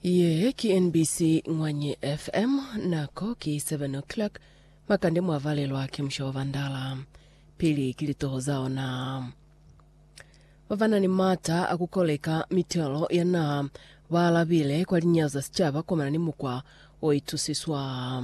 Ye ki NBC Ngwanyi FM, nako ki 7 o'clock, makande mwa valelwa ki musha wa bandala. Pili ki litoho za ona. Ba ba na ni mata a ku koleka mitelo ya naha ba alabile kwa linyao za sicaba kwa mana ni mukwa o itusiswa.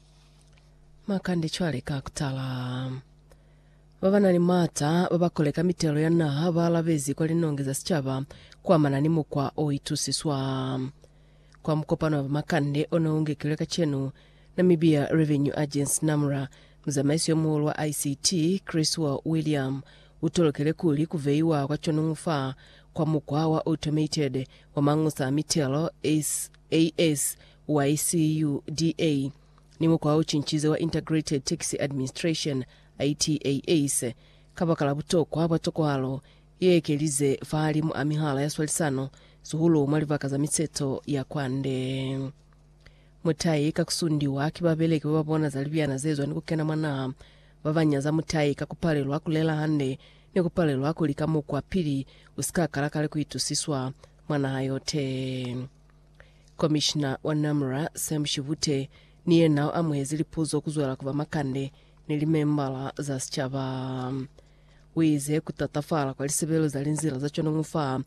Makande cwale ka kutala. Ba ba na ni maata ba ba koleka mitelo ya naha ba alabezi kwa linongi za sicaba kuamana ni mukwa o itusiswa. Kwa mukopano wa bamakande o ne u ngekilwe kacenu, Namibia Revenue Agency, NAMRA, muzamaiso yo muhulu wa ICT, Chriswell William, u tolokele kuli ku veiwa kwa conungu fa kwa mukwa wa automated wa mañusa a mitelo, AS, YCUDA, ni mukwa o cincize wa Integrated Tax Administration, ITAS, kabakala butokwa bwa tokwalo ye ekelize fahalimu a mihala ya swalisano, sihulu mwa libaka za miseto ya kwande. Mutai ka kusundiwa ki babeleki ba babona za libyana zezwa ni kukena mwa naha, babanya za mutai ka kupalelwa kulela hande ni kupalelwa kulika mukwa pili usika kala kale kuitusiswa mwa naha yote. Komishina wa NAMRA, Sam Shivute, ni yena u amuhezi lipuzo kuzwela ku bamakande ni limembala za sicaba. Uize kutatafala kwa lisebelo za linzila za cwanongo fa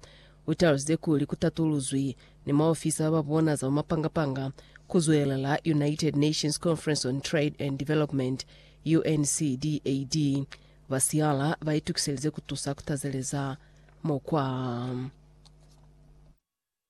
u talusize kuli ku tatuluzwi ni maofisa ba bona za bamapanga-panga kuzwelela United Nations Conference on Trade and Development, UNCDAD, ba siala ba itukiselize kutusa kutazeleza mukwa.